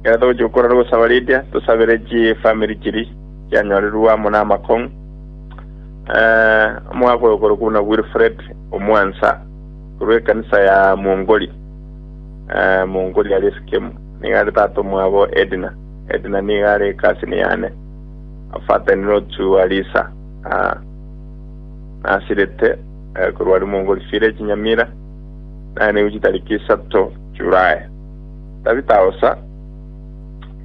Ekero togochia gokora rogosaba riria, tosabere chifamiri chiria chianyorerwe amo namakong'u. Eh, omogaka oyo okorokwa buna Wilfred omwansa korwa ekanisa ya Mongoli, eh, Mongoli aria Esikemu, nigo are tata omwabo Edna. Edna nigo are ekasini yane, a father in law to Alisa. Ah, nasirete eh, korwa aria Mongoli village Nyamira, naye naigu chitariki isato July. Tabita osa,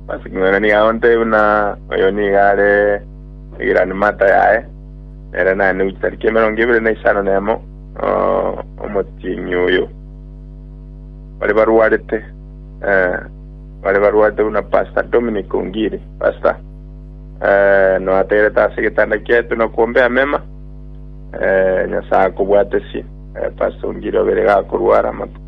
basi king'wanani iga onte buna oyo nigo are egiranimata yaye, nere nane gochia tariki emerongo ebere na isano na emo, omotienyi oyo. Bare barwarete, eh, bare barwarete buna Pastor Dominic Ongiri, Pastor, eh, noategerete ase egetanda kiaito na kombea amema, eh, Nyasae akobwatesie, eh, Pastor Ongiri obeire iga akorwara amatuko.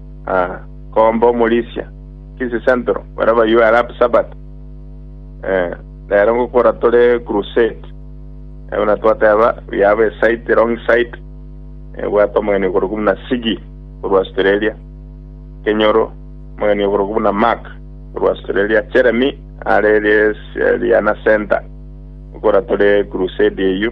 Ah, kombe omorisia, Kisii Central, baria bayio are happy Sabbath. Eh, nere ngokora tore crusade. Eh, buna twateba, we have a site, a long site. Eh, bwate omogeni okorokwa buna Sigi, korwa Australia. Kenyoro, omogeni okorokwa buna Mark, korwa Australia. Jeremy, are Ries- Riana Center. Ngokora tore crusade eyio.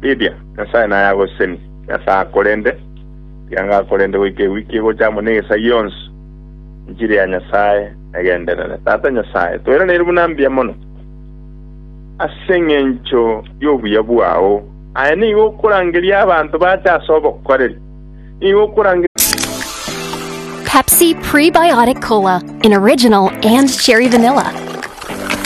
Ridia, Nyasae naye agosesenie. Nyasae akorende, rianga akorende goika ewiki egocha amo n'egesagia yonsi. Enchiri ya Nyasae negenderere. Tata Nyasae, toiraneiri buna mbuya mono, ase engencho y'obuya bwao. Aye nigo okorangeria abanto bache ase obokoreri, nigo okorangeria. Pepsi Prebiotic Cola in original and cherry vanilla.